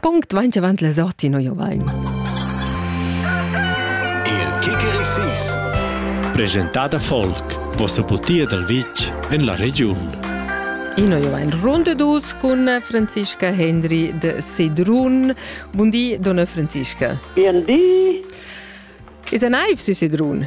Punkt vainch avant la sorti no jovain. Il Kikerisis Presentada Folk, vossa putia dal vitg en la regiun. Ino jovain runde dus cun Franziska Hendry de Sedrun. Bundi, donna Franziska. Bien di. Is a naiv si Sedrun?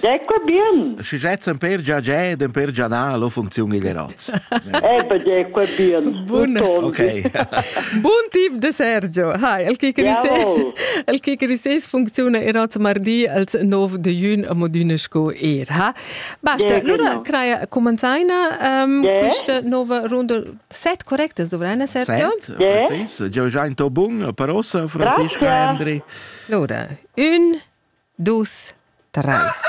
Deco bien. Schi jett semper già già ed per già na lo funcziun il eroz. Eh be deco bien. Bun. Okay. Bun tip de Sergio. Hi, el che criseis el che criseis funcziuna eroz mardi als 9 de jun a Modüne sco er ha. Basta, lura craia comenzaina um, questa nova runda set correctas dovreina Sergio? Set, precis. Già già in to bun, per ossa Francesca Andri. Lura, un Dus, treis.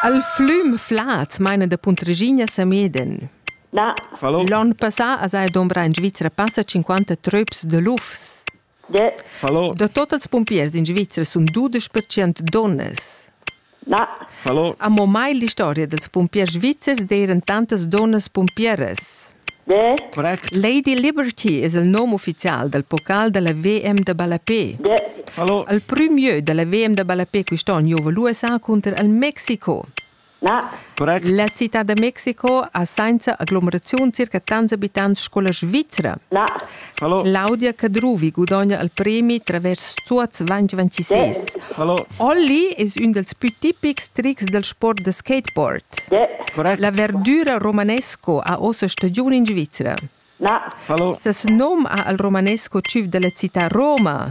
Al flüm flad maina da Puntregina Sameden. Na. Fallo. L'on passà as ha dombra in Svizzera passa 50 tröps de lufs. Yeah. Fallo. Da totals pompiers in Svizzera sun 12% donnas. Na. Fallo. Amo mai l'istoria dels pompiers svizzers d'eiran tantas donnas pompieras. Be? Correct. Lady Liberty es il nom ufficial dal pocal da la VM da ballapè. Be? Hallo? Il prümieu da la VM da ballapè quist'on giouva l'USA cunter il Mexico. Na? Correct. La cità da Mexico ha sainza aglomeraziun circa tants abitants sco la Svizra. Na? Hallo. Claudia Cadruvi gudogna il premi travers Zuoz 2026. Hallo. Olli es ün dels pü tipics trics del sport da skateboard. Correct. La verdüra romanesco ha ossa stagiun in Svizzera. Na. Hallo. Ses nom ha al romanesco tschüf della città Roma.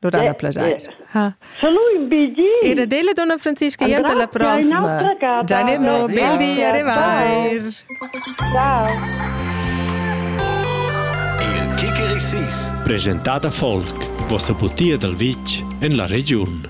Durant la plagiair. Sche lu in bigi. E da della donna Francisca io della prossima. Gianni no, bel di, arrivai. Ciao. Il Kikerisis. Presentata folk, vossa butia dal vitg en la regiun.